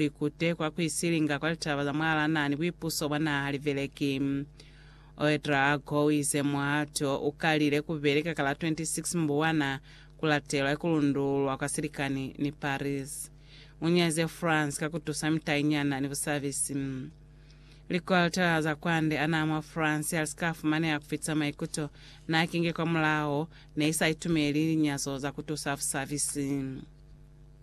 likute kwa kuisilinga kwa litaba za mwalana ni buipuso bwa naha libeleki. Ouedraogo uize muhato ukalile kubeli ka kala 26 Mbuwana kulatelwa ikulundululwa kwa silikani ni Paris. Unyaze France ka kutusa mitainyana ni busabisi. Likoltela za kwande anaa mwa France yalisika fumaneha kufita maikuto naakinge kwamulaho, neisaitumeli linyazo za kutusa busabisi.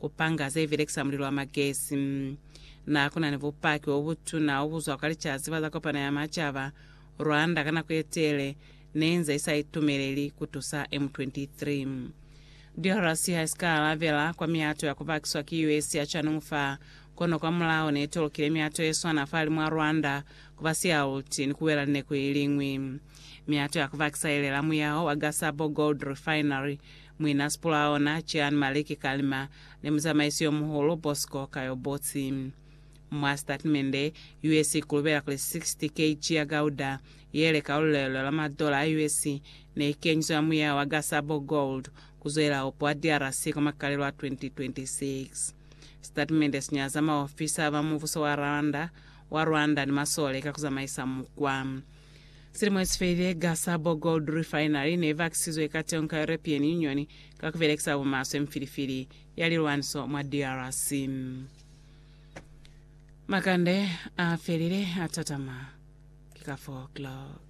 Ku panga ze belekisa mulilo wa magesi. Na ku na ni bupaki bo butuna o bu zwa kwa Licaziba za Kopano ya Macaba, Rwanda ka nako ye tele ne inze i sa itumeleli ku tusa M23. DRC ha i si ka alabela kwa mihato ya ku bakiswa ki US ya canungu fa, kono kwa mulao ne i tolokile mihato ye swana fahalimu a Rwanda ku ba sialuti ni ku wela lineku i liñwi. Mihato ya ku bakisa i lela muyaho wa Gasabo Gold Refinery Muina Spulaona, Jean Maliki Kalima, ni muzamaisi yomuhulu Bosco Kayobotsi. Mwa sitatimende, US ikulubela kuli 60 kg ya gauda, yele ka lulelo la madola a US, neikenyiswe mwa muyaha wa Gasabo Gold kuzoela opo a DRC kwa makalelo a 2026. Sitatimende sinyaza maofisa ba mubuso wa Rwanda, wa Rwanda ni masole ka kuzamaisa mukwa. Silimo esifelile, gasa bo Gold Refinery ne vakisizwe ka teño ka European Union ka kubelekisa bumaswe mifilifili ya lilwaniso mwa DRC. Makande afelile atatama ki ka 4 o'clock.